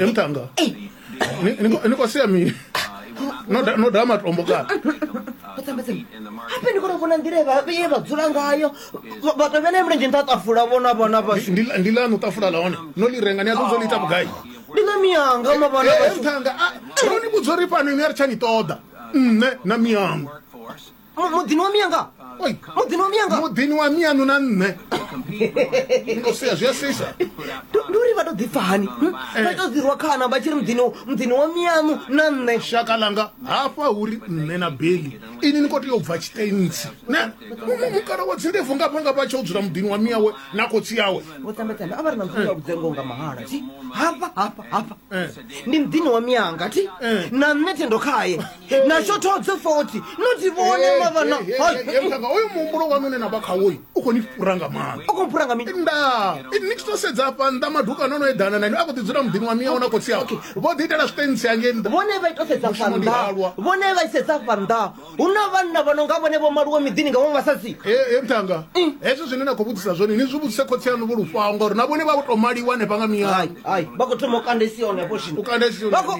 emtanga ni kwa sia mini no da- no da matombo kana hape ndi kona vhona nḓila ye vha- ye vha dzula ngayo Vha- vha tovhe na mulenzhe nṱha tafula vhona vhona vhashu Ndi- ndi lanu tafula la hone no li renga ni a ḓodzo liita vhugai ndi na miyanga ma vhona vhashu emtanga no ni vhudza uri fhano ini a ri tsha ni ṱoḓa nṋe na miyanga Mu- muḓini wa mianga Oi. muḓini wa mianga muḓini wa mianu na nṋe Ndo sia, zwi a sisa Ndi- ndi uri vha to ḓipfa hani hm? vha to ḓirwa khana vha tshi ri muḓini muḓini wa mianu na nṋe shaka langa hafha uri nṋe na beli ini ni khou tea u bva tshitentsi ne Mu- mu- mukala wa dzindebvu ngafha ngafha a tsha u dzula muḓini wa miawe na khotsi yawe vho tambetambe a vha ri na mufunga vhudzengo nga mahala ti hafha hafha hafha Eh. ndi muḓini wa mianga ti Eh. na nṋe thendo khaye na shothodze foti no dzi vhone mavhana mutanga oyo muhumbulo wanu une na vha khawoyi u khou ni fhura nga maanḓa u khou fhura nga mini nda ni tshi to sedza afha nnḓa maduka no no eḓana na ine a khou ḓi dzula muḓini wa miyawo na khotsi awo vho ḓi itela zwiṱentsi hangei nnḓa vhone vha ito sedza fa nnḓa vhone vha isedza fa nnḓa hu na vhanna vha no nga vhone vho maluwe miḓini nga vhaṅwe vhasadzi e mutanga mm. hezwo zwine na khou vhudzisa zwone ni zwi vhudzise khotsi aṋu vho lufhaho ngauri na vhone vha vho to maliwa hanefha nga miyawo vha khou thoma u kandesiwa hanefho zwino vha khou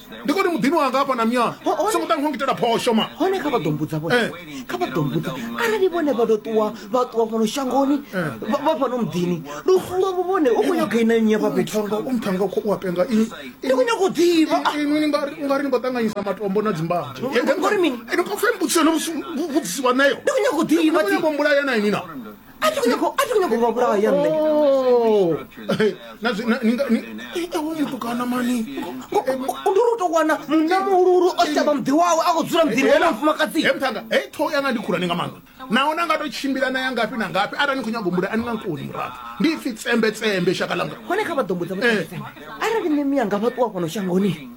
ndi koni muḓini wanga hafha na myana songo ṱa ngitela phosho ma hone kha vha ḓo mbudza vhone eh. kha vha ḓo mbudza arali vhone vha ḓo ṱuwa vha ṱuwa fhano shangoni eh. vha fhano muḓini lu fungo vho vhone u khou nyaga ina nnyi vha fhethu nga u mthanga khou wa penga ini ndi khou nyaga u ḓivha ini ni nga u nga ri ni khou ṱanganyisa matombo na dzimbadzo ngori mini ene khou fembutsa no vhudzisiwa nayo ndi khou nyaga u ḓivha ndi khou nyaga u mbulaya na ini na a tshi khou nyanga a tshi khou nyanga u vha vhulaya nṋe Oh. Eh, na zwi- na- ni nga- ni- eh, eh, hoyu mutukana mani Eh, ndi uri u tou wana munna muhululu o shavha muḓi wawe a khou dzula muḓini wa mufumakadzi he mthanga he ṱhoho yanga ndi khulwane nga maanḓa naho na nga to tshimbila na ya ngafhi na ngafhi arali ni khou nyago mbula a ni nga nkoni muraḓo ndi ipfi tsembe tsembe shaka langa hone kha vha ḓo mbudza Eh. vhutete arali mimi yanga vha ṱuwa fhano shangoni